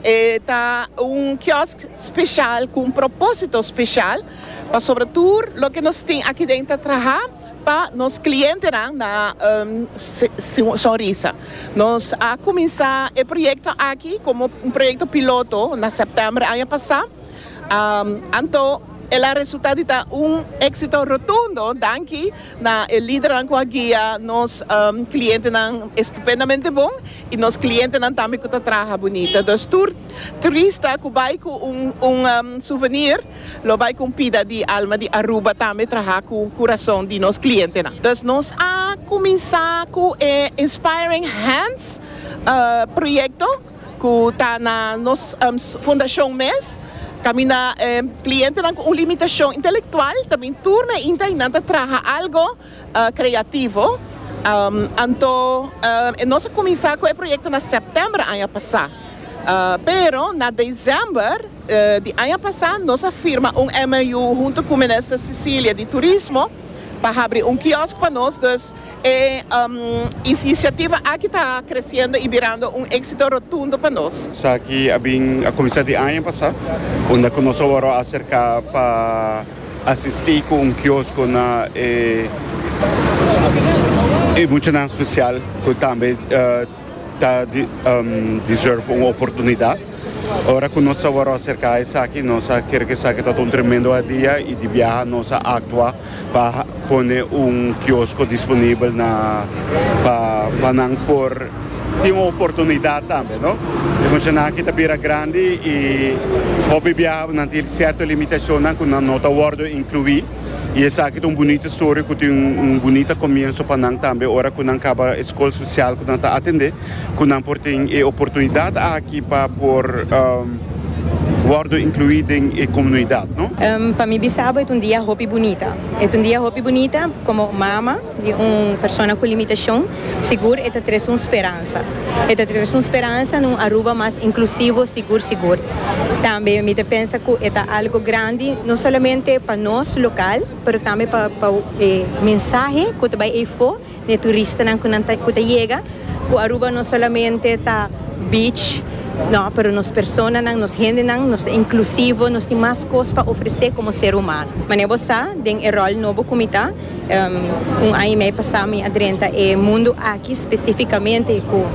E ta un kiosk speshal ku un propósito speshal pasobra tur loke nos tin aki den ta traha pa nos klientenan na sonrisa. Nos a kuminsá e proyekto aki komo un proyekto piloto na sèptèmber aña pasá. Anto el a resulta di ta un éksito rotundo danki na e lidernan ku a guia nos klientenan estupendamente bon i nos klientenan tambe ku ta traha bunita. Dus tur turista ku bai ku un souvenir lo bai ku un pida di alma di Aruba tambe traha ku kurason di nos klientenan. Dus nos a kuminsá ku e Inspiring Hands proyekto. cu ta na nos fundacion mes, caminda e clientenan cu un limitacion intelectual, ta bin tur meinta y nan ta traha algo creativo. Anto nos a cuminsa cu e proyecto na september aña pasa, pero na december di aña pasa nos a firma un MOU hunto cu Minister Cecilia di Turismo pa habri un kiosk pa nos, dus E inisiativa aki ta kresiendo i birando un éksito rotundo pa nos. Esaki a bin a kuminsá di aña pasá, unda ku nos a wòrdu a aserká pa asistí ku un kiosko na e muchanan spesial ku tambe. Ta deserve un oportunidad. Ora cu nos a wor acerca esaki nos a ker cu esaki ta un tremendo hadia y di biaha nos a actua pa pone un kiosco disponible na pa nan por tin un oportunidad tambe no. E muchanan aki ta bira grandi y hopi biaha nan tin cierto limitacionnan cu nan no ta wordo inclui. Y esaki ta un bunita historia cu tin un bunita comienso pa nan tambe ora cu nan caba e scol special cu nan ta atende, cu nan por tin e oportunidad aki pa por wordo inclui den e comunidad. Pa mi bisabo e ta un dia hopi bunita. E ta un dia hopi bunita como mama. Di un persona cu limitacion, sigur e ta tres un speransa. E ta tres un speransa na un Aruba mas inclusivo, sigur sigur. Tambe mi ta pensa cu e ta algo grandi no solamente pa nos local, pero tambe pa pa e mensahe cu ta bay eyfo na e turistanan cu nan ta cu ta yega, cu Aruba no solamente ta beach, no, pero nos personanan, nos hendenan, nos ta inclusivo, nos tin mas cos pa ofrece como ser humano. Mane bo sa, den e rol nobo cu mi ta. Un aña y medio pasá mi a drenta e mundu aki specificamente cu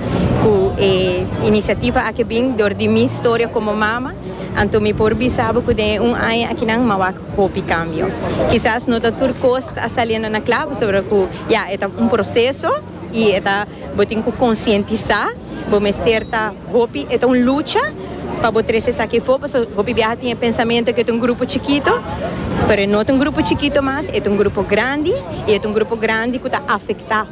e iniciativa aki a bin dor di mi storia como mama, anto mi por bisa bo cu den e un aña akinan m'ha wak hopi cambio. Kisas no ta tur cos ta a saliendo na claro pasobra cu ya e ta un proceso. Y e ta bo tin cu concientisa, bo mester ta hopi e ta un lucha pa bo trece esaki afo, paso hopi biaha tin e pensamento que e ta un grupo chikito, pero e no ta un grupo chikito mas, e ta un grupo grandi y e ta un grupo grandi cu ta afecta.